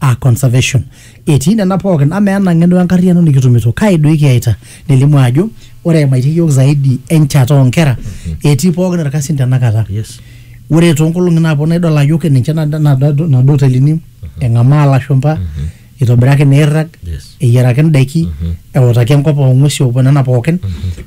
a conservation etii nena pookin amaa ena ng'eno enkarriyiano nikitumito kai doi kiyaita nelimu ajo ore emaitie yiok zaidi enchata oonkera etii pookin irkasin tenakata Yes. ore toonkolong'i naaponu idol ajo ke ninche nada- nada- nado hotelini eng'amaa ilashumpa itobiraki neirrag Yes. eyiaraki indaiki eutaki enkop oong'uesi opuo nena pookin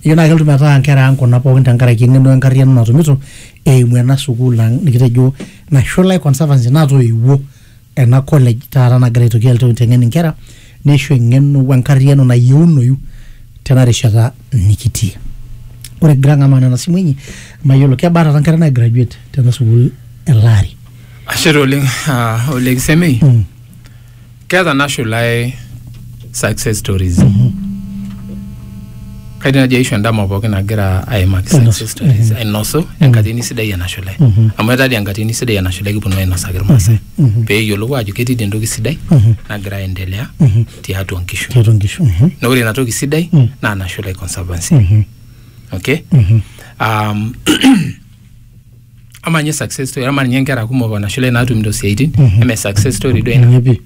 ejo naa kelotu metaa inkera ang kuna pookin tenkaraki eng'eno enkarriyiano natumito eimu ena sukuul ang nikitejo nashula e conservancy natoiwuo ena college taata nagira aitoki alotu aiteng'en inkera neisho eng'eno wenkarriyiano nayieunoyu tena rishata nikitii ore kigira ang'amaa nena simui inyi mayiolo kebaa taata nkera nai graduate tena sukuul ele ari ashe taa oleng ah, ole kisemei keeta nashulae success stories kaidim naji aisho endama pookin nagira aimaki Ainosu. success stories ainosu enkatini sidai enashule amu etadi enkatini sidai enashule kiponu ainosaki irmaasai pee eyiolou ajo ketii dii entoki sidai nagira aendelea tiatua nkishu tiatua nkishu Mhm. na ore ina toki sidai naa nashule conservancy okay um, ama ninye success story ama ninye nkera kumok onashule naatumito siaitin Mhm. eme success story duo ina Ninye pii.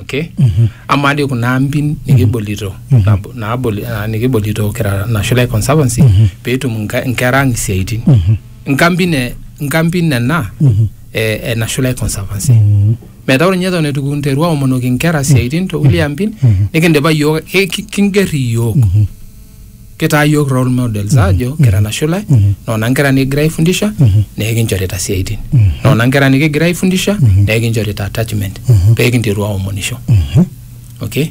okay Mhm. ama dii kuna ampin nikibolito Mhm. nab- naaboli- ah, nikibolito kira nashule conservancy Mhm. peetum nka- nkera ang isiaitin Mhm. nkampin e- nkampin nena Mhm. e- e nashule conservancy Mhm. metaa ore ninye eton eitu kinteru aomonoki nkera siaitin tokulie ampin Mhm. nikindipa yiok ki- ki- kinger iyiok Mhm. kitaa yiok role models ajo kira nashula noona nkera nikigira aifundisha neekinchorita siaitin noona nkera nikigira aifundisha neekinchorita attachment peekinteru aomonisho okay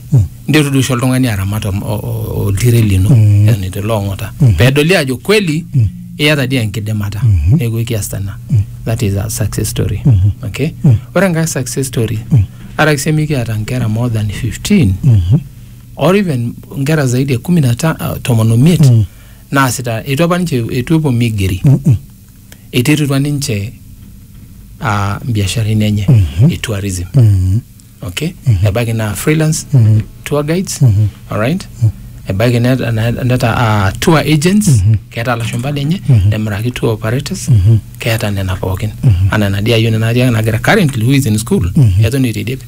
nteru doi oshi oltung'ani aramat om- o- o- oltiren lino eton itu ilo ong'ota pedoli ajo kweli iyata dii enkidimata neeku ekiasita ina that is a success story okay ore enkae success story araki sii mikiata nkera more than 15 or even nkera zaidi ya kumi na ta- ah, tomon omiet Mm. naasita eitu apa ninche eitu epuo migeri Mm-mm. eiterutua ninche uh, mbiasharani enye Mhm. e tourism Mm. okay ebaiki naa freelance Mhm. tour guides Mhm. alright ebaiki net- ne- neta uh, tour agents keeta lashumba lenye nemiraki tour operators keeta nena pookin anaa enadia yioni natii nagira currently who is in school eton eitu eidip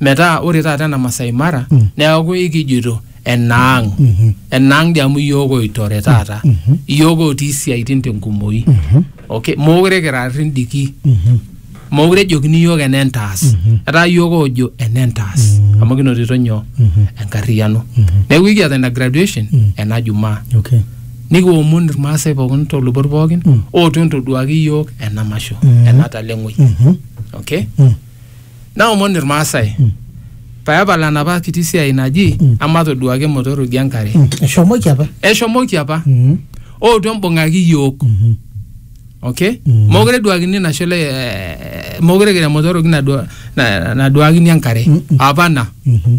metaa ore taata ena Masai Mara Mm. neaku ikijoito enaang Mhm. enaang dii amu iyiook oitore taata Mhm. iyiook otii isiaitin tenkumoi Mhm. okay mookure kira rrindiki Mhm. mookure ejokini iyiook enentaas Mhm. etaa iyiook oojo enentaas Mhm. amu kinotito nyoo Mhm. enkarriyiano Mhm. neeku ikiata ina graduation Mm. ena jumaa Okay. nikiomon irmaasai pookin tolubot pookin Mm. ootu entoduaki iyiook ena masho Mm. ena taleng'oi Mhm. okay Mm. Naomon Ilmaasai pee epal enapa kiti siai naji amatoduaki motoroki enkare. Mm, eshomoki apa Eshomoki apa Mm, ootu embung'aki iyiook. mhm. Okay? Mm. Mokure eduakini ina shole eh, mokure kira motoroki nadua- na- naduakini enkare. Mm, mm. Apa ina. Mhm.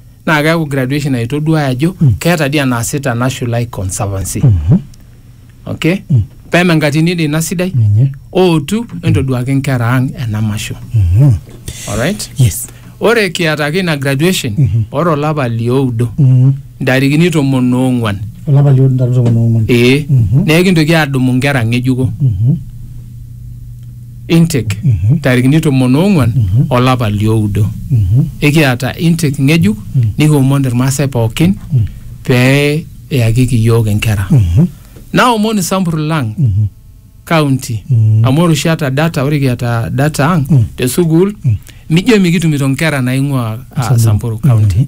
naa keaku graduation aitoduaya ajo keeta dii enaasita Nashul ai conservancy okay peme enkatini dii ina sidai Ninye. ootu entoduaki nkera ang ena masho Mhm. alright Yes. ore kiata ake ina graduation ore olapa lioudo Mhm. ntarikini tomon oong'uan Olapa lioudo ntarikini tomon oong'uan. ee Mhm. neekintoki aadumu nkera ng'ejuko Mhm. Intake, ntarikini tomon oong'uan olapa lioudo. Ekiata intake ng'ejuk nikiomon Ilmaasai pookin pee eyakiki iyiook inkera. Naomon isampur lang county amu ore oshi ata data, ore kiata data ang te sukuul mijo mikitumito inkera naing'uaa ah, Samburu county.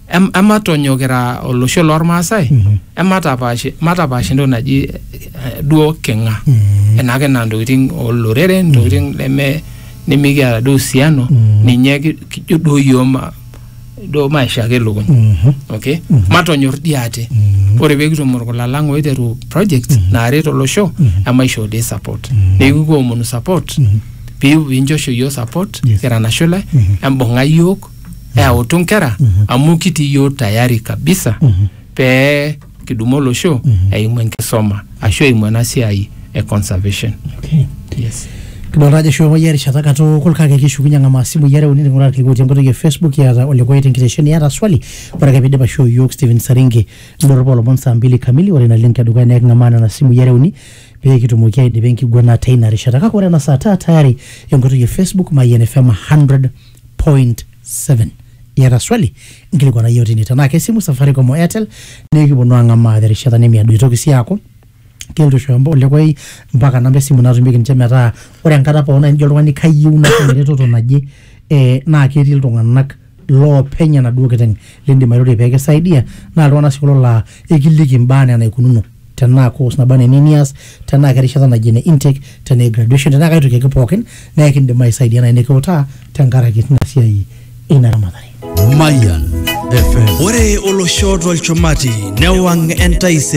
em, ematonyok kira olosho lormaasai Mhm. ematapaash matapaash entoki naji eh, duo king'a Mhm. enake naa ntokitin olorere ntokitin neme nimikiata duo usiano Mhm. ninye ki- kijo duo yioo ma duo maisha ake lukuny Mhm. okay Mhm. matonyor dii ate Mhm. ore pee kitum orkula lang oiteru projects naaret olosho Mhm. emaisho dii support Mhm. neeku kiomonu support Mhm. pee pinchosho yioo support Yes. kira nashula Mhm. embung'a yiok eyautu nkera amu kitii iyiook tayari kabisa pee kidumu olosho eimu enkisoma ashu eimu ena siai e conservation. Okay. Yes. kidolta ajo eshukokoyie erishata katukul kake kishukunye ang'amaa simui are uni ning'uraa irkiku otii enkoitoi e facebook kiata olikoe tenkitesheni iyata swali ore ake piidip aishoo iyiook Stephen Saringi indorropu olomon saa mbili kamili ore ina link edukuya naa eking'amaa nena simui are uni pee kitumoki aidipa enkiguana teina rishata kake ore ena saa taa tayari enkoitoi e facebook mayian fm 100 7 iyata swali nkilikuana yiok tine tenaa kesimu safaricom o airtel nikiponu ang'amaa terishata nemiado itoki sii aaku kelotu aishooyo mba- olekwai mpaka namba esimu natumieki ninche metaa ore enkata pookin nai nijo oltung'ani kayieu natum eretoto naje eh, naa ketii iltung'anak loopeny enaduo kiteng lindim airorie pekisaidia naa iltung'anak sii kulo laa ekiliki imbaa enaa enaikununo tenaa course naba neni nias tenaa kerishata naji ene intake tenaa e graduation tenaa kai toki ake pookin naa ekindim aisaidia nai nikiutaa tenkaraki tina siai ina ramatare Mayan FM. Ore olosho tolchumati newang' entaisere.